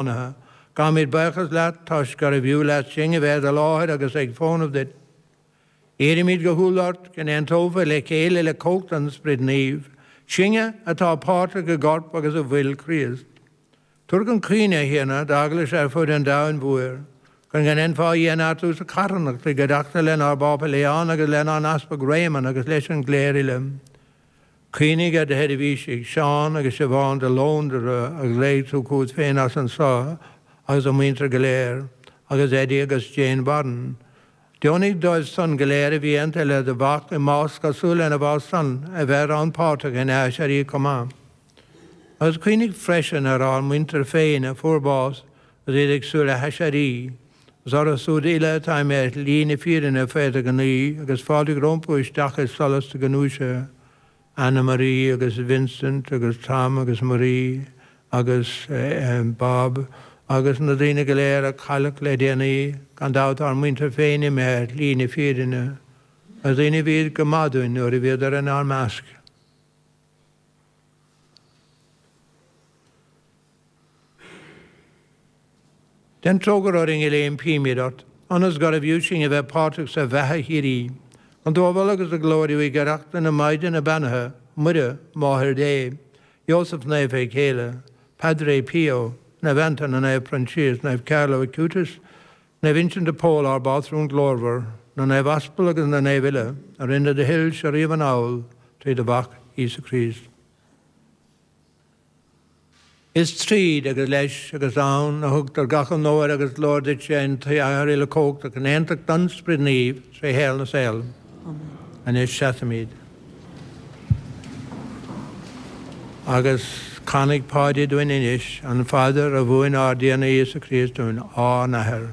Ionnaithe. Gabhaimid buíochas leat toisc gurbh fhiú leat sinn a bheith i do láthair agus ag fónamh duit. Iarraimid go humhal ort go n-aontófaí le chéile le cumhacht an Sprid Naoimh, sinne atá páirteach i gCorp agus i bhFuil Chríost. Tabhair chun cuimhne, a Thiarna, d'Eaglais ar fud an domhain mhóir, chun go ndéanfá í a neartú sa charthanacht, i gcuideachta lenár bPápa Leon agus lenár nEaspag Réamonn agus leis an gcléir uile. Cuimhnigh ar do sheirbhísigh Seán agus Siobhán de Londra a ghlaoigh tú chugat féin as an saol agus a muintir go léir, agus Eddie agus Jane Warren. Deonaigh dóibh san go léir a bhí aontaithe le do Mhac i mbás cosúil lena bhás san, a bheith rannpháirteach ina aiséirí chomh maith. Agus cuimhnigh freisin ar ár muintir féin a fuair bás agus iad ag súil le haiséirí. Is orthu siúd uile atá imithe ar shlí na fírinne fé do ghnaoi agus fáiltigh rompu isteach i solas do ghnúise. Annemarie agus Vincent agus Tom agus Marie agus Bob agus na daoine go léir a cailleadh le déanaí, gan dabht ár muintir féin imithe ar shlí na fírinne. Na daoine a bhí go maith dúinn nuair a bhíodar inár measc. Déan trócaire orainn go léir, impímid ort, ionas gurbh fhiú sinn a bheith páirteach sa bheatha shíoraí. Chun tú a mholadh agus a ghlóiriú i gcuideachta na Maighdine Beannaithe, Muire, Máthair Dé, Iósaf Naofa a chéile, Padre Pio, Naomh Antaine, Naomh Proinsias, Naomh Carlo Acutis, Naomh Uinseann de Pól ár bpátrún glórmhar, na naomh aspal agus na naomh uile a rinne do thoilse riamh anall trí do mhac Íosa Críost. Is tríd, agus leis, agus ann, a thugtar gach onóir agus glóir duitse an tAthair uilechumhachtach in aontacht an Sprid Naoimh tré shaol na saol. Anois seasaimid agus canfaidh Páidí dúinn anois an phaidir a mhúin ár dTiarna Íosa Críost dúinn, Ár nAthair.